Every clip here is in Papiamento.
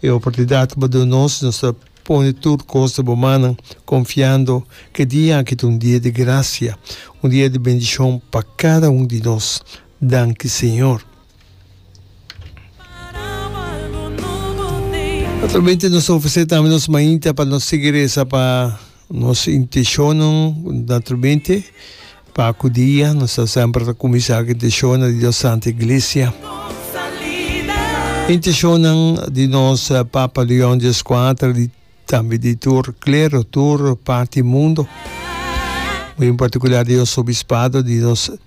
E oportunidat cu bo duna nos, nos ta pone tur cos na bo mannan, confiando cu e dia aki ta un dia di gracia, un dia di bendicion pa cada un di nos. Danki, Señor. Naturalmente nos ta ofrece tambe nos mainta pa nos sigui reza pa Nos intenshonan naturalmente pa ku dia nos ta semper ta kuminsá ku intenshonan di nos Santa Iglesia. Intenshonan di nos Papa Leon di Eskuater di tambe di tur klero, tur parti mundo, muy en partikular di nos Obispado di nos.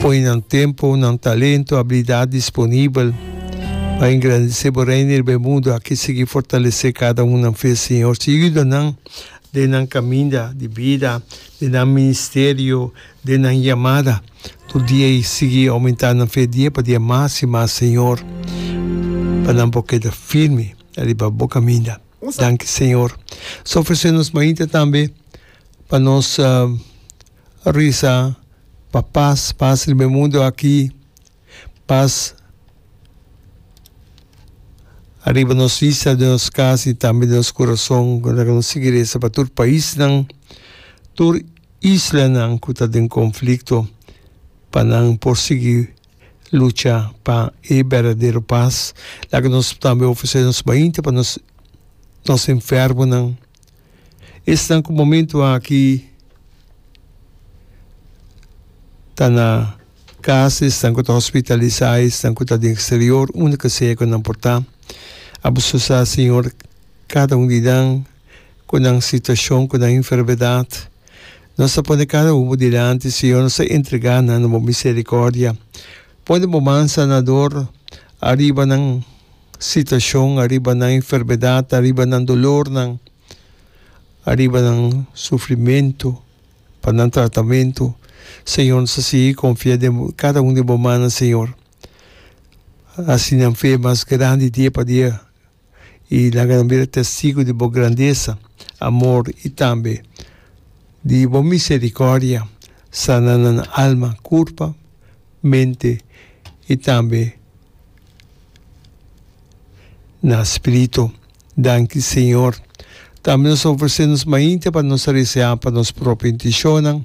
Pone nan tempo, nan talento, abilidat disponibel pa engrandece Bo Reino riba e mundo aki. Sigui fortalece cada un nan fe, Señor. Sigui yuda nan den nan caminda di bida, den nan ministerio, den nan yamada tur dia y sigui aumenta nan fe dia pa dia mas y mas, Señor, pa nan por keda firme riba Bo caminda. Danki, Señor. Nos ta ofrece nos mainta tambe pa nos. Risa pa pas, pas riba e mundu aki, pas riba nos vista, den nos kas i tambe den nos kurason. Ku ta keda un sigeresa pa tur paisnan, tur islanan ku ta den konflikto, pa nan por sigui lucha pa e berdadero pas. Laga nos tambe ofresé nos mainta pa nos enfermonan. Esnan ku momentu aki ta na kas, esnan ku ta hospitalisá, esnan ku ta den eksterior, unda ka sea ku nan por ta, abuso sa, Señor, kada un di nan ku nan situashon, ku nan enfermedat. Nos ta pone kada un bo dilanti, Señor, nos ta entregá nan na bo miserikòrdia. Pone bo man sanador ariba nan. Sitashon ariba nan enfermedad, ariba nan dolornan, ariba nan sufrimentu, pa nan tratamentu, Señor, nos a sigui confia den bo, cada un den bo mannan, Señor. Haci nan fe mas grandi dia pa dia y laga nan bira testigo di bo grandeza, amor y tambe di bo misericordia. Sana nan alma, curpa. mente i tambe na spiritu. Danki Señor. Tambe nos ta ofresé nos mainta pa nos ta deseá pa nos propio intenshonnan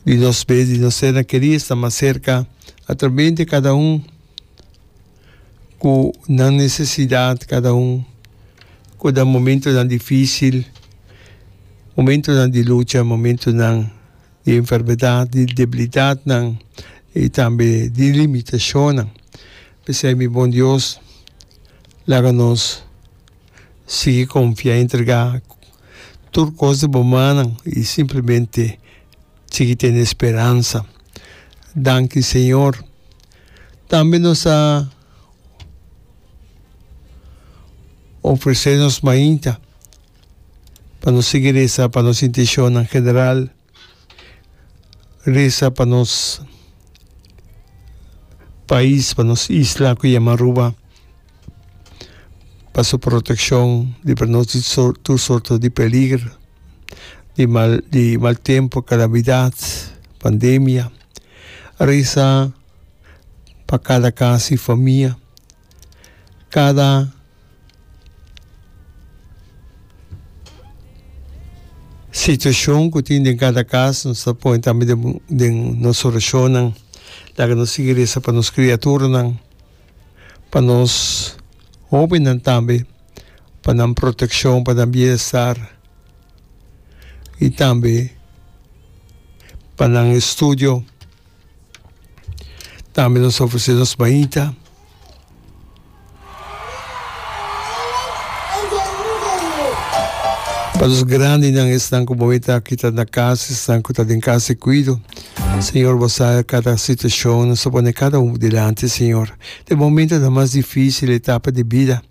di nos be di nos sernan kerí sta mas serka atrabente kada un ku nan nesesidat, kada un ku ta momentunan difísil, momentunan di lucha, momentunan. di enfermedad, di debilidadnan i tambe di limitashonnan. P'esei mi bon Dios, laga nos sigui konfia i entregá tur kos den bo mannan i simplemente sigui tene speransa. Danki Señor. Tambe nos ta ofresé nos mainta. pa nos sigui resa pa nos intencionnan general, resa pa nos pais, pa nos isla cu yama Aruba, pa su proteccion libra nos di tur sorto di peliger, di mal di mal tempo, calamidad, pandemia, resa pa cada cas y famia Kada situacion cu tin den cada cas nos ta pone tambe den nos oracionnan. Laga nos sigui reza pa nos criaturanan, pa nos hobennan tambe, pa nan proteccion, pa nan bienestar y tambe pa nan estudio. tambe nos ta ofrece nos bañita. Pa nos grandinan esnan cu bo meta kita na casa, esnan cu ta den casa di cuido. Señor, bo sa cada situacion nos a pone cada un dilanti, Señor. Den momentonan mas dificil etapa di bida.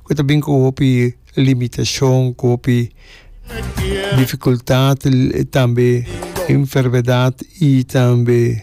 ku ta bin ku hopi limitashon, ku hopi difikultat, tambe enfermedat i tambe.